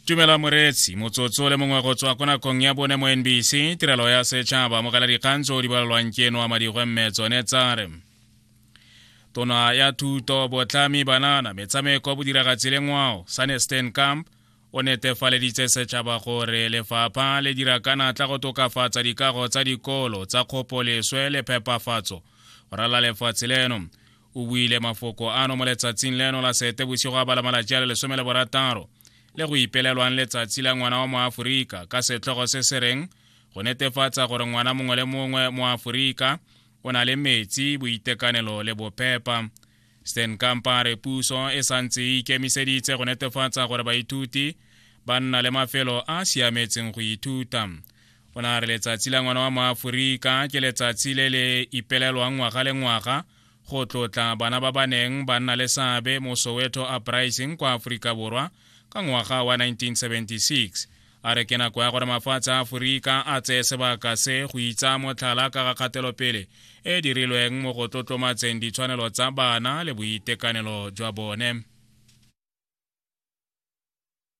tumela moreetsi motsotso le mongwe go tswa ko nakong ya bone mo nbc tirelo ya setšhaba mo kala dikgang tso di balelwang ke eno a madigwe mme tsone tsare tona ya thuto botlhami banana metshameko bodiragatsi le ngwao sane stan camp o netefaleditse setšhaba gore lefapha le dira ka natla go tokafatsa dikago tsa dikolo tsa kgopoleswe le phepafatso go rala lefatshe leno o buile mafoko ano mo letsatsing leno la sete bosigo a bala malatsi a le lesome le borataro le go ipelelwang letsatsi la ngwana wa moaforika ka setlhogo se se reng go netefatsa gore ngwana mongwe le mongwe mo aforika o na le metsi boitekanelo le bophepa stan kampa re puso e santse e ikemiseditse go netefatsa gore baithuti ba nna le mafelo a a siametseng go ithuta o ne a re letsatsi la ngwana wa moaforika ke letsatsi le le ipelelwang ngwaga le ngwaga go tlotla bana ba ba neng ba nna le seabe mo soweto uprising kwa aforika borwa ka ngwaga wa 1976 a re ke nako ya gore mafatshe a aforika a tseye sebaka se go itsa motlhala ka ga kgatelopele e dirilweng mo go tlotlomatseng ditshwanelo tsa bana le boitekanelo jwa bone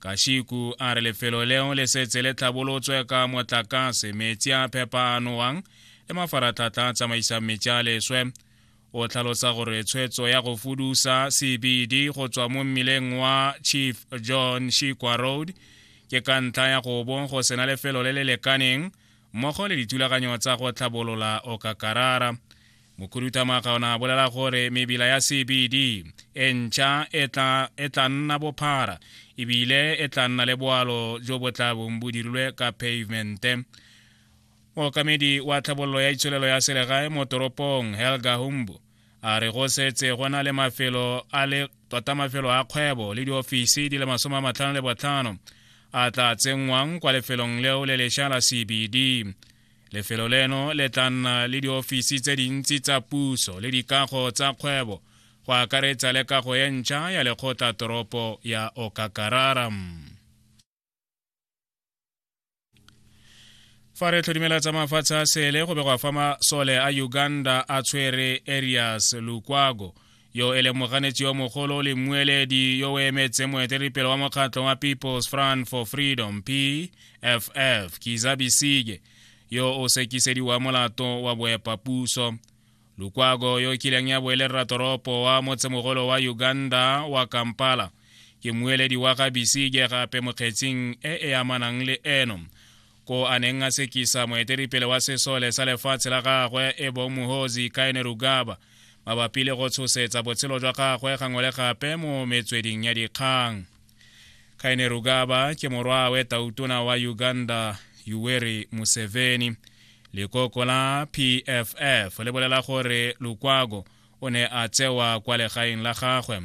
Kashiku a re lefelo leo le setse le tlhabolotswe ka motlakase metsi a phepa a nowang le mafaratlhatlha a tsamaisang metsi a leswe o tlhalosa gore tshwetso ya go fudusa cbd go tswa mo mmileng wa chief john shikwa road ke ka ntlha ya go bo go sena lefelo le le lekaneng mmogo le dithulaganyo tsa go tlhabolola okakarara mokhuduthamaga o ne a bolela gore mebila ya cbd e ntšha e tla e nna bophara ebile e tla nna le boalo jo bo tla bong bo dirilwe ka pavemente mookamedi wa tlhabololo ya itsholelo ya selegae mo toropong helga humbo a re go setse go na le mafelo a le tota mafelo a kgwebo le diofisi di le masome a matlhano le botlhano a tla tsenngwang kwa lefelong leo le lesha la cbd lefelo leno le tla nna le diofisi tse dintsi tsa puso le dikago tsa kgwebo go akaretsa le kago e ntšha ya lekgotla toropo ya okakarara fa re tlhodimela tsa mafatshe a sele go begwa fa masole a uganda a tshwere arias lukwago yo e leng moganetsi yo mogolo le mmueledi yo o emetseng moeteledipele wa mokgatlho wa people's front for freedom pff kiza bisige yo o sekisediwa molato wa boepapuso lukwago yo kileng ya boelerra toropo wa motsemogolo wa uganda wa kampala ke mmueledi wa ga bisige gape mokgetsing e e amanang le eno ko a neng a sekisa moetelipele wa sesole sa lefatshe la gagwe e bong mohozi kaene rugaba mabapi le go tshosetsa botshelo jwa gagwe gangwe le gape mo metsweding ya dikgang kaene rugaba ke morwawe tautona wa uganda yuweri museveni lekoko la pff le bolela gore lukwago o ne a tsewa kwa legaeng la gagwe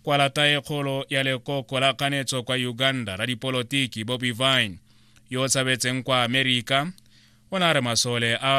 kwa lata e kgolo ya lekoko la kganetso kwa uganda la dipolotiki bobi vine yo o tshabetseng kwa amerika o ne a re masole a